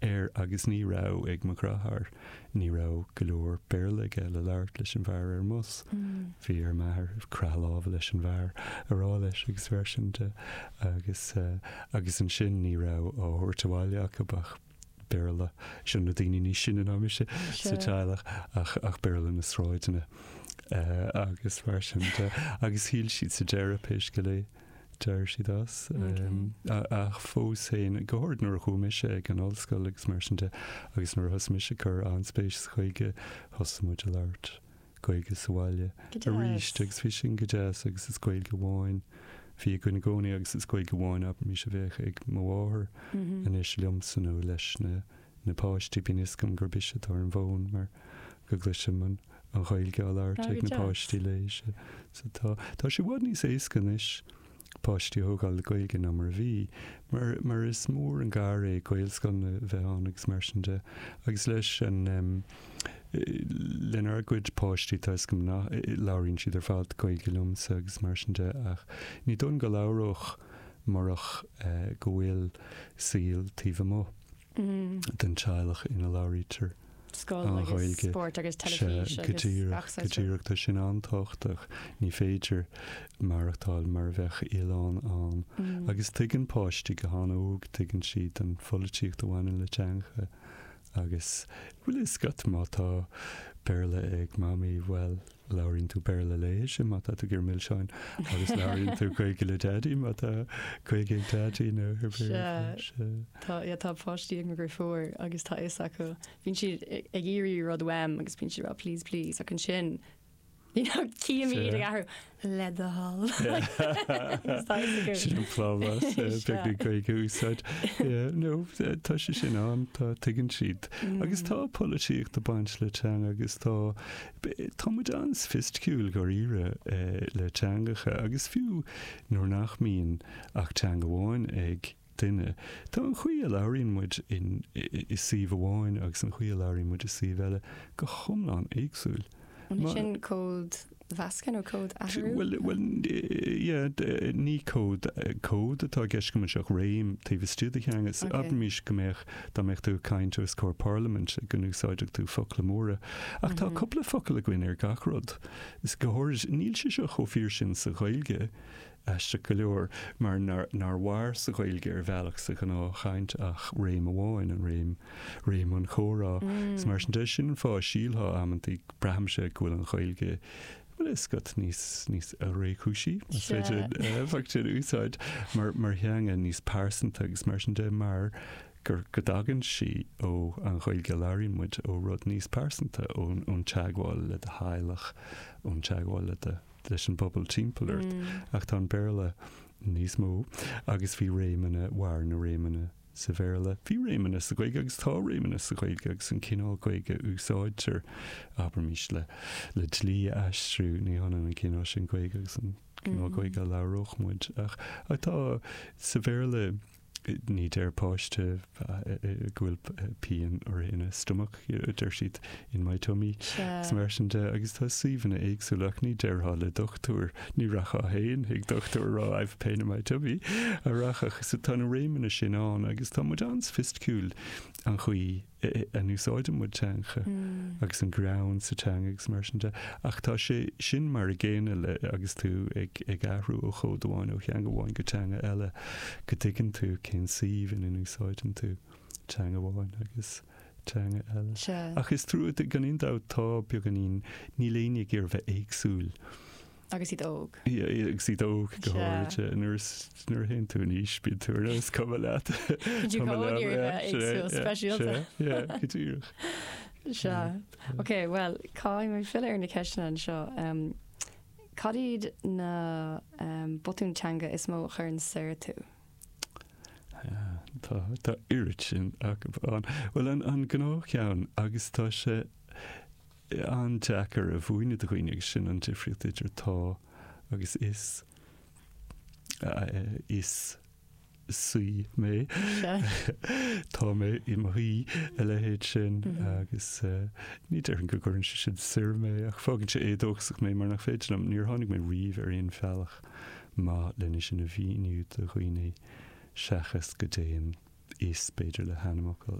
air agus ní raibh ag mo dheartháir, ní raibh go leor Béarla aige le labhairt leis an bhfear ar an mbus. Bhí ar m'athair croitheadh láimhe leis an bhfear a rá leis agus mar sin de agus agus ansin ní raibh á thabhairt abhaile acub ach Béarla, sin na daoine ní sine ná mise sa teaghlach, ach ach Béarla na sráideanna. Eh agus mar sin de agus shíl siad sa deireadh pé scéal é, d'éirigh siad as. Ach fós féin, go háirid nuair a chuaigh mise ag an ollscoil agus mar sin de, agus nuair a thosaigh mise ag cur an-spéis sa Ghaeilge, thosaigh muid ag labhairt Gaeilge sa bhaile arís agus bhí sin go deas agus is Gaeilge amháin a bhí againn i gcónaí agus is Gaeilge amháin anois a bheadh ag mo mháthair anois liomsa nó leis na na páistí, bíonn fhios agam gurb ise atá ar an bhfón mar go gcloisim an Ghaeilge á labhairt ag na páistí léithi. Tá, tá sé i bhfad níos éasca anois páistí a thógáil le Gaeilge ná mar a bhí, mar is mór an gar é Gaelscoileanna a bheith ann agus mar sin de. Agus leis an, lenár gcuid páistí, tá fhios agam nach, labhraíonn siad ar fad Gaeilge liomsa agus mar sin de ach ní dóigh liom go labhródh murach go bhfuil saol taobh amuigh. den teaghlach ina labhraítear an Ghaeilge. Sea, go díreach, go díreach. Tá sin an-tábhachtach. Ní féidir maireachtáil mar a bheadh oileán ann. Agus tuigeann páistí go han-óg, tuigeann siad an pholaitíocht a bhaineann le teangacha. Agus bhfuil a fhios agat, má tá Béarla ag Mamaí, bhuel, Labhraíonn tú Béarla léithi má tá tú ag iarraidh milseáin agus labhraíonn tú Gaeilge le Daidí má tá Gaeilge ag Daidí nó pé ar bith. Sea, tá páistí an-ghéar agus tá a fhios acu. Bíonn siad ag iarraidh rud uaim agus bíonn siad ag rá please please ach ansin you know cífidh mé iad ag athrú le do thoil. Sin an plámás, bheith an Ghaeilge a úsáid. No, tá sé sin ann, tá, tuigeann siad. Agus tá polaitíocht ag baint le teanga agus tá Tá muid an-soifisticiúil dháiríre le teangacha, agus fiú nuair nach mbíonn ach teanga amháin ag duine, tá an chaoi a labhraíonn muid i suíomh amháin agus an chaoi a labhraíonn muid i suíomh eile go hiomlán éagsúil. An é sin códmheascadh nó códathrú? Bhuel, yeah, ní cód, cód atá i gceist agam anseo ach réim taobh istigh de theanga. Abraimis go mbeadh Dá mbeadh tú ag caint os comhair parlaiminte go n-úsáidfeadh tú focla móra. Ach tá cúpla focal againn ar gach rud. Is go h-áirid níl sé seo chomh fíor sin sa Ghaeilge, aisteach go leor, mar nár nár mhair sa Ghaeilge ar bhealach sa ghnáthchaint ach réim amháin, an réim, réim an chomhrá. Is mar sin de, sin an fáth a sílfeá amantaí, braithimse, go bhfuil an Ghaeilge bhfuil fhios agat, níos, níos réchúisí, más féidir an aidiacht sin a úsáid, mar, mar theanga níos pearsanta agus mar sin de mar gur, go dtagann sí ó an Ghaeilge a labhraíonn muid, ó rud níos pearsanta, ón, ón teagmháil le do theaghlach, ón teagmháil le do, leis an bpobal timpeall ort. Ach tá an Béarla níos mó agus bhí réimeanna, mhair na réimeanna sa Bhéarla. Bhí réimeanna sa Ghaeilge agus tá réimeanna sa Ghaeilge agus an cineál Gaeilge a úsáidtear, abraimis, le, le dlí a aistriú, ní hionann an cineál sin Gaeilge agus an cineál Gaeilge a labhródh muid. Ach ach tá, sa Bhéarla, ní deir páiste go bhfuil pian uirthi ina stomach. deir siad, in my tummy, is mar sin de, agus tá suíomhanna éagsúla ach ní déarfá le dochtúir, ní rachfá féin chuig dochtúir a rá I've a pain in my tummy, a rachadh, so tá na réimeanna sin ann agus tá muid an-soifisticiúil an chaoi a n-úsáideann muid teanga agus an greann sa teanga agus mar sin de, ach tá sé sin mar a gcéanna le, agus tú ag ag athrú ó chód amháin, ó theanga amháin go teanga eile, go dtuigeann tú cén suíomh ina n-úsáideann tú teanga amháin agus. teanga eile. Sea. Ach is trua, gan aon dabht, tá, beagáinín, níl éinne ag iarraidh bheith éagsúil. Agus iad óg. Yeah, agus iad óg go háirithe. Nuair a, nuair a théann tú in aois, bíonn tú ar nós cuma leat. Bíonn tú go háirithe éagsúil, speisialta. Yeah, go díreach. Sea. Ok, bhuel, caithfidh mé filleadh ar na ceisteanna anseo. Um, cad iad na um, botúin teanga is mó a chuireann soir tú? Tá, tá oiread sin acu ann. Bhuel, an, an gnáthcheann, agus tá sé an-deacair a mhúineadh do dhaoine, agus sin an difríocht idir tá agus is, is saoi mé, tá mé i mo shaoi, a leithéid sin, agus ní déarfainn go gcuireann sé sin soir mé, ach fágann sé éadóchasach mé mar nach féidir liom, níor tháinig mé riamh ar aon bhealach maith lena sin a mhíniú do dhaoine seachas go dtéann is b'fhéidir le hainmfhocail.